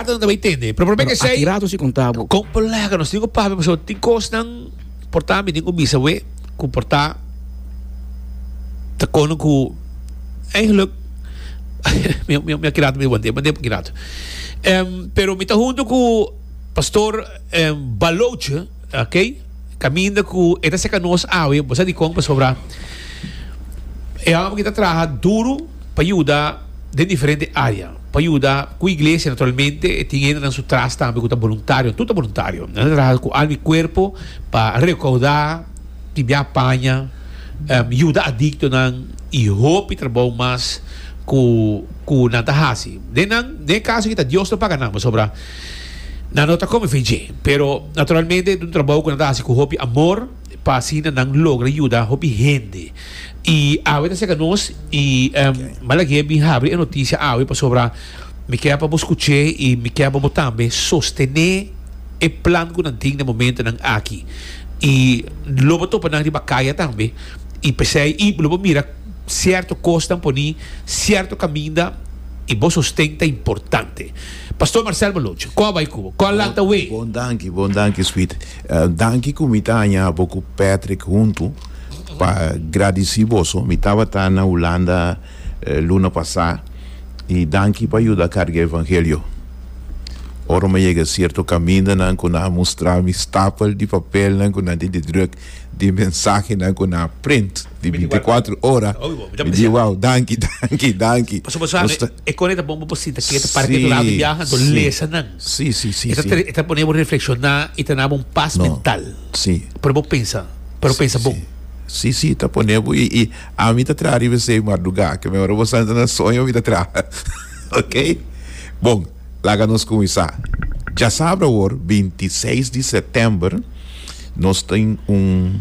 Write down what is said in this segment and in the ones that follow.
Ato nan ta bay tende. Pero problem esey. Aki rato si con tabo. Con colega nos tin un papi paso tin cos nan porta mi tin un bisawe cu porta ta cono cu eigenlijk mi mi mi aki rato mi wande wande aki rato. Um, pero mi ta junto cu pastor um, Baloche, ok? Caminda cu eta seca nos awe, bosa di con pasobra. E homem que está trabalhando duro para ajudar de diferente área. Pa yuda ku iglesia naturalmente e tin hendenan su tras tambe ku ta boluntario, tur ta boluntario. Nan ta traha ku alma i kuerpo pa rekaudá, timbiá paña, yuda adiktonan i hopi trabou mas ku ku nan ta hasi. Den nan den e kaso aki ta Dios lo paga nan pasobra nan no ta kome fe dje. Pero naturalmente e ta un trabou ku nan ta hasi ku hopi amor pa asina nan logra yuda hopi hende. Y awe ta cerca nos y Balaguer a bin habri e noticia awe pasobra mi kier pa bo scuche y mi kier pa bo tambe sostene e plan cu nan tin den momentonan aki y lo bo topa nan riba caya tambe y pesey y lo bo mira cierto cos nan poni cierto caminda y bo sosten ta importante. Pastor Marcel Baloch cu a bay cu bo? Cu a lanta wee? Bon danki, bon danki sweet. Danki cu mi ta haña bo cu Patrick hunto. Pa gradisí boso, mi tabata na Hulanda luna pasá, i danki pa yuda karga e evangelio. Ora mi a yega sierto kamindanan ku nan a mustra mi stapel di papelnan ku nan tin di druk di mensahenan ku nan a print di bintikwatro ora, mi di, Wow, danki, danki, danki. Paso bo sabi, e kos ei ta bon pa bo sinta ketu para ketu lado di biaha, anto lesa nan. E ta poné bo reflekshoná i ta duna bo un pas mental. Sí. Pero bo pensa, pero pensa bon. Sí, sí, sí, ta pone bo i, i ami ta traha riba esei mardugá, ke me ora bo sa na soño mi ta traha, ok? Bon, laga nos kuminsá. Djasabra awor, binti i seis di sètèmber, nos tin un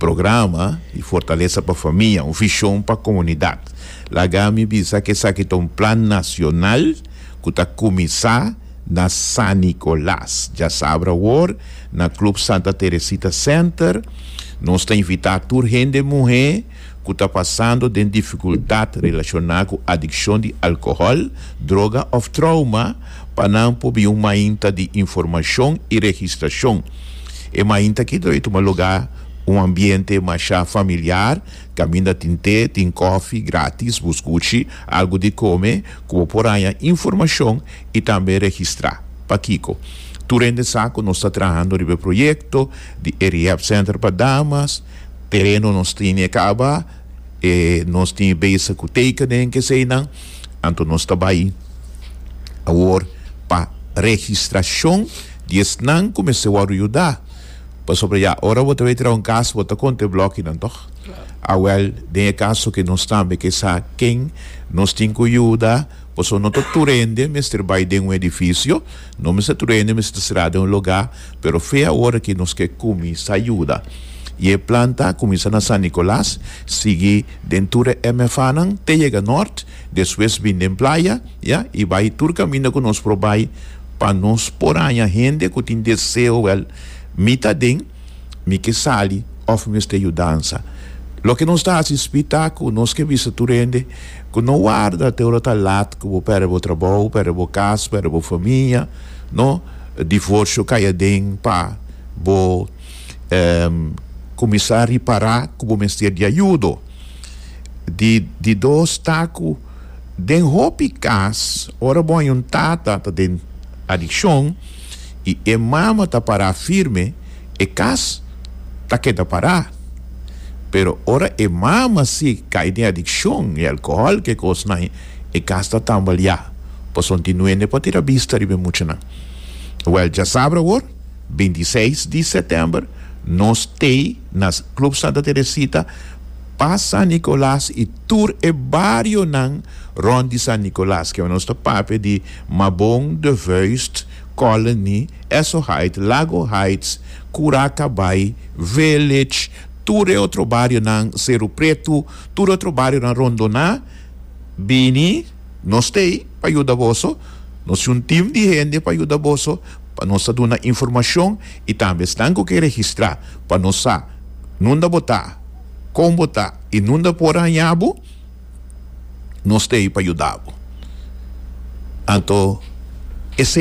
programa di fortalesa pa famia, un vishon pa komunidat. Laga mi bisa ke esaki ta un plan nasional ku ta kuminsá. na San Nicolas. Dja sabra awor na Club Santa Teresita Center nos ta invitá tur hende muhé ku ta pasando den difikultat relashoná ku adikshon di alkohòl, droga òf trouma pa nan por bin un mainta di informashon i registrashon. E mainta aki dor e tuma lugá un ambiente mashá familiar kaminda tin té, tin kòfi gratis, bus kuchi algu di kome ku bo por haña informashon i tambe registrá. Pakiko? Tur hende sa ku nos ta trahando riba e proyekto di e Rehab Center pa damas, tereno nos tin e kaba, e nos tin e besta ku tekenen keseinan, anto nos ta bai awor pa registrashon di esnan ku mester wòrdu yuda, pasobra ya ora bo ta bai traha un kas bo ta konta e blòkinan, tòg? Awèl, den e kaso ke nos tambe ke sa ken nos tin ku yuda, Pasobra no ta tur hende mester bai den un edifisio, no mester tur hende mester ta sirá den un lugá, pero fe a ora ki nos ke kuminsá yuda. I e plan ta kuminsá na San Nikolas, sigui den tur e MFAnan te yega nòrt, despues bini den playa, ya, i bai tur kaminda ku nos por bai pa nos por haña hende ku tin deseo, wèl, mi ta den. Mi ke sali òf mi mester yudansa? Loke nos ta hasi spit ta ku nos ke bisa tur hende ku no warda te ora ta lat ku bo pèrdè bo trabou, pèrdè bo kas, pèrdè bo famia, no? Divorsio kai aden pa bo kuminsá ripará ku bo mester di ayudo. Di di dos ta ku den hopi kas, ora bo a yuntata ta den adikshon, i e mama ta pará firme, e kas ta keda pará. Pero ora e mama sí kai den adikshon i alkohòl ku e kosnan, e kas ta tambaleá, pasobra tin nuende pa tira bista riba e muchanan. Wèl, dja sabra awor, bintiseis di sètèmber, nos t'ei na Club Santa Teresita pa San Nicolas i tur e barionan rònt di San Nicolas, kiba nos ta papia di. Mabon, De Vuist, Colony, Essoheit, Lago Heights, Curacabai, Village, tur e otro barionan, Seru Pretu, tur e otro barionan rondo na, bini, nos ta ei pa yuda boso, nos tin un tim di hende pa yuda boso, pa nos ta duna informacion y tambe esnan cu ke registra pa nos sa nunda bo ta, con bo ta y nunda por haña bo. nos ta ei pa yuda bo. Anto esei.